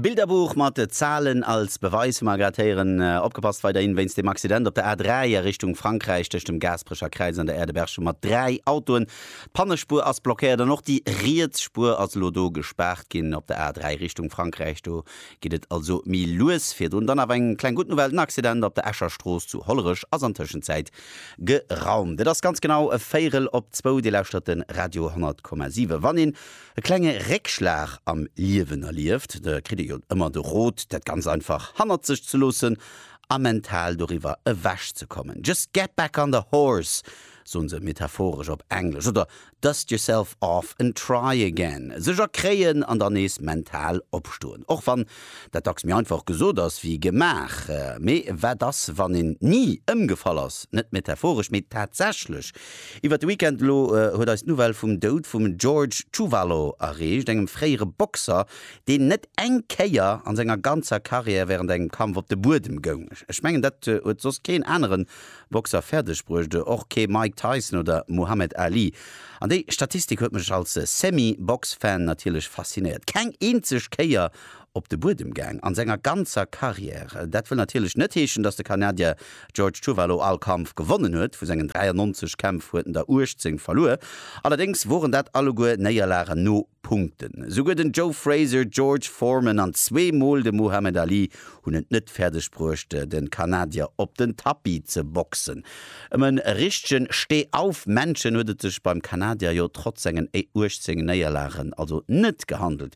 Bilderbuch mat Zahlen als Beweis hu mer grad héieren. Opgepasst weiderhin wéinst dem Accident op der A3 a Richtung Frankräich tëscht dem Gaasperecher Kräiz an der Aire de Berchem mat 3 Autoen. D'Pannespuer ass blockéiert an och déi riets Spuer ass elo do gespaart ginn. Op der A3 Richtung Frankräich do geet et also méi lues virdrun. Dann awer eng kleng gutt Nouvelle, den Accident op der Escher Strooss zu Hollerech ass an Tëschenzäit geraumt. Et ass ganz genau e Véirel op zwou, Dir lauschtert de Radio 100,7. Wann een E klenge Réckschlag am Liewen erlieft, da kritt ee jo ëmmer de Rot, dat ganz einfach hannert sech ze loossen a mental doriwwer ewech ze kommen. Just get back on the horse, soen se metaphoresch op Englesch, oder dust yourself off and try again, sech erkréien an dann nees mental opstoen. Och wann dat dacks méi einfach gesot ass wéi gemaach. Mee wat ass, wann een ni ëmgefall ass, net metaphoresch, mee tatsächlech Iwwert de Weekend elo huet eis d'Nouvelle vum Doud vum George Chuvalo erreecht, engem fréiere Boxer, deen net eng Kéier an senger ganzer Karriär wärend engem Kampf op de Buedem goung. Ech mengen, dat huet soss keen anere Boxer fäerdeg bruecht, och kee Mike Tyson oder Muhammad Ali. An déi Statistik huet mech als Semi-Box-Fan natierlech faszinéiert, keng eenzeg Kéier op de Buedem gaang a senger ganzer Karriär. Dat wëll natierlech net heeschen, datt de Kanadier George Chuvalo all Kampf gewonnen huet. Vu sengen 93 Kämpf huet en der 18 verluer. Allerdéngs woren dat alleguer Néierlagen no Punkten. Souguer den Joe Frazier, George Foreman an zwee Mol de Muhammad Ali hunn et net fäerdeg bruecht, de Kanadier op den Tapis ze boxen. Ëm e richtegen Steh-auf-Männchen huet et sech beim Kanadier jo trotz sengen 18 Néierlagen also net gehandelt.